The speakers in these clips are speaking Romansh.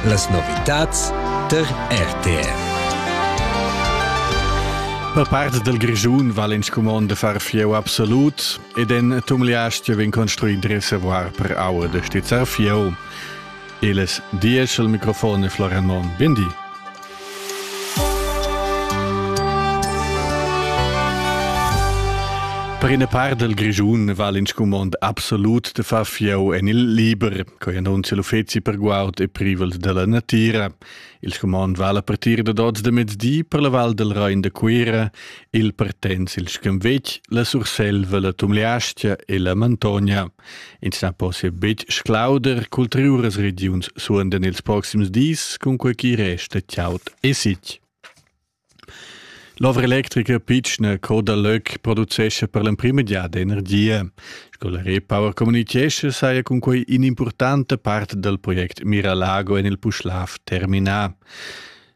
Las novitads tar RTR. Per part del Grischun val in scumond de far fieu absolut ed en Tumliastio vin construit de reservoir per aua de stizzar fieu. Eles dies al microfon e Florian Mon, bindi. Per ina part del Grischun val in scumond absolut de far fieu en il liber, coi annuncia l'uffeci per guard e privels della natira. Il scumond val a partir da dots de mezdi per la val del Rein de Cuira, il partens il Schemvec, la Surselva, la Tumliastia e la Mantogna. Ins na possia betg sclauder cultriuras regiuns suondan ils proxims dis, cun quei chi resta chiaut e sitg. L'ovra electrica pitschna Coda Löck producescha per l'emprima giada energia. Sco la Repower communichescha, saja cun quei in'impurtanta part dal project Miralago en il Puschlav terminà.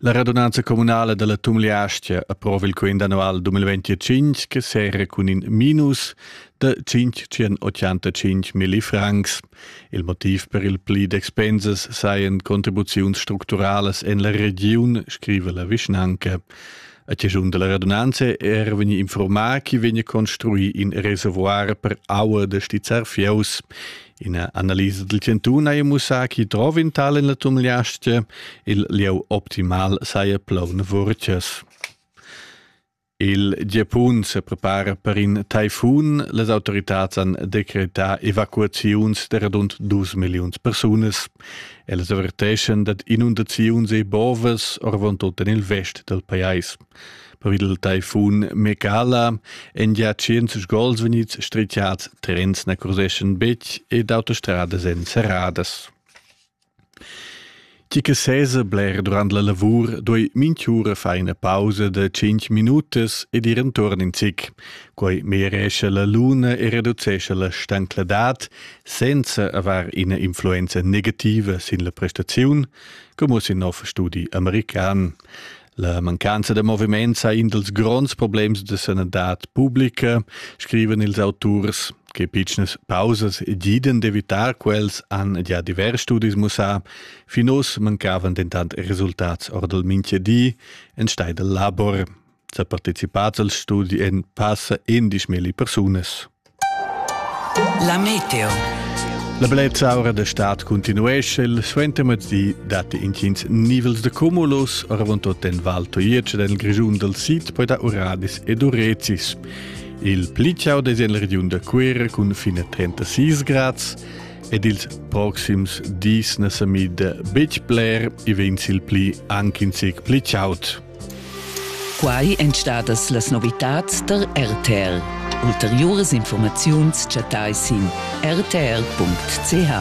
La radunanza communala dalla Tumliastia approva il quint annual 2025 che sera cun in minus da 585 millifrancs. Il motiv per il pli d'expensas sajan contribuziuns structuralas en la regiun, scrive la vischnanca. A ciascun della radunanza era vegni informato che vegna construì in reservoir per aua da stizzar fieus. Ina analisa dal chantun haja mussà chi drov in tal in la tumliastia, il lieu optimal saja plaun vurcias. Il Giapun se prepara per in taifun. Les autoritats han decretà evacuaziuns de radund 2 milliuns persunas. Ellas averteschan dad inundaziuns e bovas orvon tot en il vest del pajais. Per il taifun Megala en gia 100 gols vegnids stritgiads, terrens na curseschan betg ed autostradas èn serradas. Tgi che sesa bler durant la lavur duai minch'ura far ina pausa da 5 minutas ed ir enturn in zic. Quai meglierescha la luna e reducescha la stancladad senza aver ina influenza negativa sin la prestaziun, come sin nov studi american. La mancanza da moviment sa in dals gronds problems da sanadad publica, scriven ils auturs, che pitschnas pausas giden d'evitar quels han già divers studis mussà, fin oz mancavan dentant resultats or dal mintgadi en stai dal labor. Sa partecipats al studi en passa endisch milli persunas. La meteo. La blezza ora da stat continuesce, il suentermezdi date intgins nivels de cumulus, avontot en Val Toietsch en il Grigiun del Sid, poi da Uradis ed Urecis. Il pli ciao des en la regiun de Quera cun fine 36 grads ed ils proxims dis ne sa mid betg bler e vegn il pli anche in sec pli ciaut. Quai èn stadas las novitads tar RTL. Ulteriuras informaziuns chattai sin rtr.ch.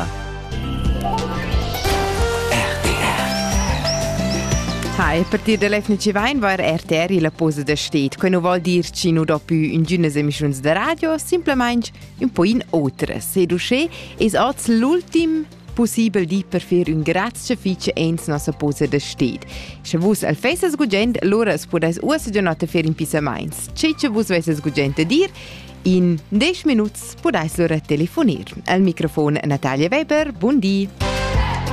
Ha il partit da l'FNC vain var RTR illa posa da sted, que nu voul dir chi nu do più ingünas emischiuns da radio, simplamaing ün po in otras. Ed uschè es oz l'ultim pussibel di per fer ün grazcha fich ins nossa posa da sted. Sche vus al fesas gugent, lura as pudais uossa già notta fer in pissamaints. Che che vus vesses gugent a dir, in 10 minuts pudais lura telefonir. Al microfon Natalia Weber, bun di!